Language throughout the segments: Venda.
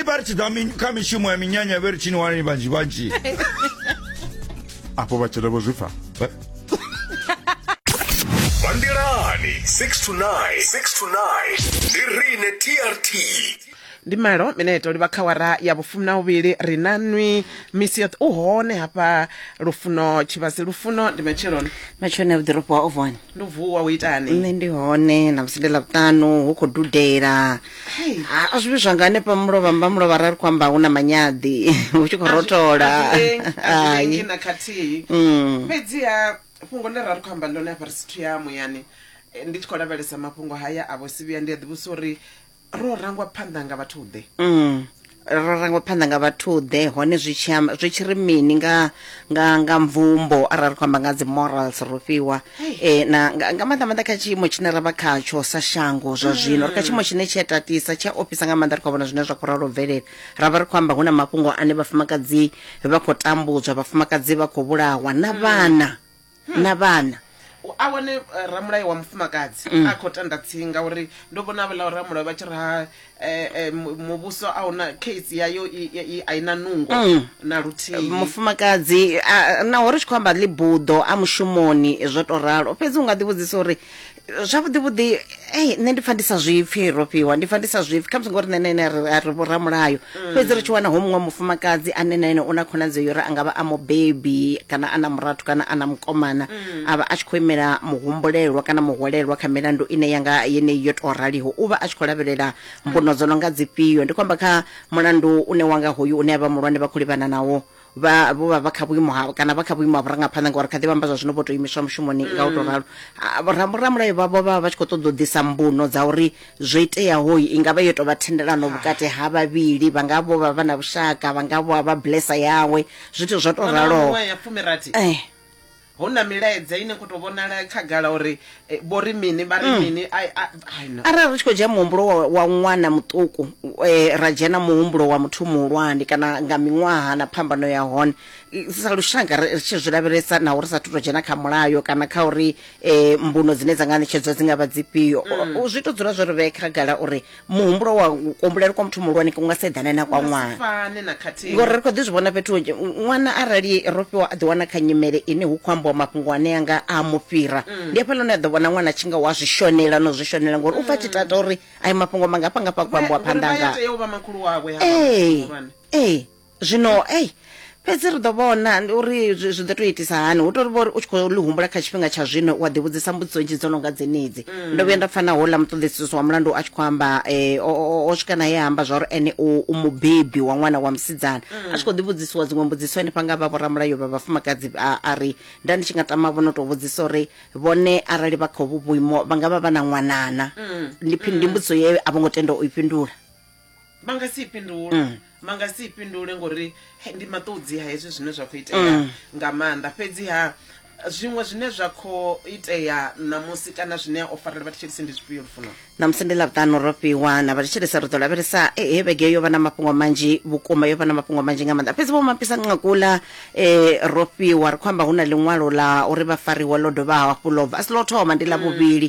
iparitsidza mi- kha mishumo ya minyanya vhe ri tshini wanani vhanzhi vhanzhi afho vhatshele vho zwi pfa Bandelani 6 to 9. 6 to 9. Ndi rine TRT. ndi malo mineto livha kha wara ya vhufumi na uvhili ri na nwi misi yoṱhe u hone hafha lufuno tshivhasi lufuno ndi matsheloni matshone vhuḓoropo wa ovon ndi u vuwa u itani nṋe ndi hone na musi ndi ḽavhuṱanu hu khou dudela Hey. Ha, a zwi vhi zwanga hanefha mulovha mba mulovha ra ri khou amba hu na manyaḓi hu tshi khou A zwi- rotola a zwi lengi- a zwi Hai. lengi na khathihi Mm. fhedziha fhungo ḽe ra ri khou amba ḽone hafha ri sithu ya muyani eh, ndi tshi khou lavhelesa mafhungo haya a vho sivhiya ndi a ḓivhusa uri ro rangwa phanḓa nga vhathu ḓe Mm. ra rangwa phanḓa nga vhathuḓe hone zwi tshi amba- zwi tshi ri mini nga nga nga mvumbo arali ri khou amba nga dzi morals ro fhiwa eh na nga nga maanḓa maanḓa kha tshiimo tshine ra vha khatsho sa shango zwa zwino ri kha tshiimo tshine tshi a tatisa tshi a ofhisa nga maanḓa ri khou vhona zwine zwa khou ralo bvelela ra vha ri khou amba hu na mafhungo ane vhafumakadzi vha khou tambudzwa vhafumakadzi vha khou vhulawa na vhana na vhana a wane eh, ramulayo wa mufumakadzi Mm. a khou tanda tsinga uri ndo vhona havhala ramulayo vha tshi ri ha eh, eh, mu- muvhuso a una case yayo i- i- i- a i na nungo Mm. na luthihi mufumakadzi a- naho ri tshi khou amba ḽibuḓo a mushumoni zwo to ralo fhedzi u nga ḓivhudzisa uri zwavhuḓi vhuḓi ei nṋe ndi pfa ndi sa zwipfi ro fhiwa ndi pfa ndi sa zwipfi khamusi ngori nṋe nene ri a ri vhoramulayo mm. fhedzi ri tshi wana ho muṅwe mufumakadzi ane na ene u na khonadzeo yo ri a nga vha a mubebi kana a na murathu kana a na mukomana mm. a vha a tshi khou imela muhumbulelwa kana muhwalelwa kha milandu ine ya nga yeneyi yo tou raliho u vha a tshi khou lavhelela mbuno dzo no nga dzifhio ndi khou amba kha mulandu une wanga hoyu une a vha muhulwane vha khou livhana nawo vha vho vha vha kha vhuimo ha kana vha kha vhuimo ha vhurangaphanḓa ngauri kha ḓi vhamba zwa zwino vho to imiswa mushumoni nga u to mm. ralo ah, ramulayo vha vho vha vha tshi kho ṱoḓa u ḓisa mbuno dza uri zwo iteaho i nga vha yo tovha thendelano vhukati ha vhavhili vha nga vho vha vha na vhushaka vha nga vho vha blessa yawe zwithu zwo to raloho eh Hu na milaedza ine kho to vhonala khagala uri eh, vho ri mini vha ri mm. mini I, I, I know. arali ri tshi khou dzhia muhumbulo wa, wa ṅwana muṱuku eh, ra dzhena muhumbulo wa muthu muhulwane kana nga miṅwaha na phambano ya hone sa lushaka ri tshi zwi lavhelesa naho ri sa thu to dzhena kha mulayo kana kha uri eh, mbuno dzine dza nga ṋetshedzwa dzi nga vha dzifhio mm. zwi to dzula zwo ri vhee khagala uri muhumbulo wa u kuambulela kwa muthu muhulwane ku nga sa eḓane na kwa ṅwana fane na khathihi ngori ri khou ḓi zwi vhona fhethu hunzhi Ṅ- ṅwana arali ro fhiwa a ḓiwana kha nyimele ine hu khou ambiwa mafhungo ane anga a mu fhira ndi hafha lune a ḓo vhona ṅwana a tshi nga wa zwi shonela no zwi shonela ngori u pfa a tshi tata uri ayi mafhungo mangafha ngafha a khou ambiwa Ngori phanḓa vha ya nga tea u vha makhulu wawe ha ee muhulwane. ee zwino ei fhedzi ri ḓo vhona uri zwi zwi ḓo tou itisa hani hu tori vhori u tshi khou ḽi humbula kha tshifhinga tsha zwino wa ḓivhudzisa mbudziso nzhi dzo no nga dzenedzi mm. ndo vhuya nda pfana houḽa muṱoḓisiso wa mulandu a tshi khou amba um o swika naye amba zwa uri ene u mubebi wa ṅwana wa musidzana mm. a tshi khou ḓivhudzisiwa dziṅwe mbudziso henefha nga vha vhoramulayo vha vhafumakadzi a ri nda ndi tshi nga tama vho no tou vhudzisa uri vhone arali vha khou vhu vhuimo vha nga vha vha na ṅwanana mm. ndi mbudziso ye a vho ngo tenda u i fhindula vha nga si i fhindule Mm. vha nga si i fhindule ngori he, ndi maṱudzi ha hezwi zwine zwa khou itea Mm. nga maanḓa fhedzi ha zwiṅwe zwine zwa khou itea ṋamusi kana zwine o farela vhathu tshelisi ndi zwifhio lufuno ṋamusi ndi ḽavhuṱanu ro fhiwa na vhathetshelesa ri ḓo lavhelesa eh, he vhege yo vha na mafhungo manzhi vhukuma yo vha na mafhungo manzhi nga maanḓa fhedzi vho mapisa nqakula eh, ro fhiwa ri khou amba hu na ḽiṅwalo la uri vha fariwa ḽo dovha hafhu ḽo bva a si ḽo thoma ndi ḽa vhuvhili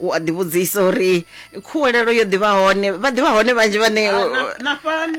u a ḓivhudzisa uri khuwelelo yo ḓivha hone vha ḓivha hone vhanzhi vhane na fhano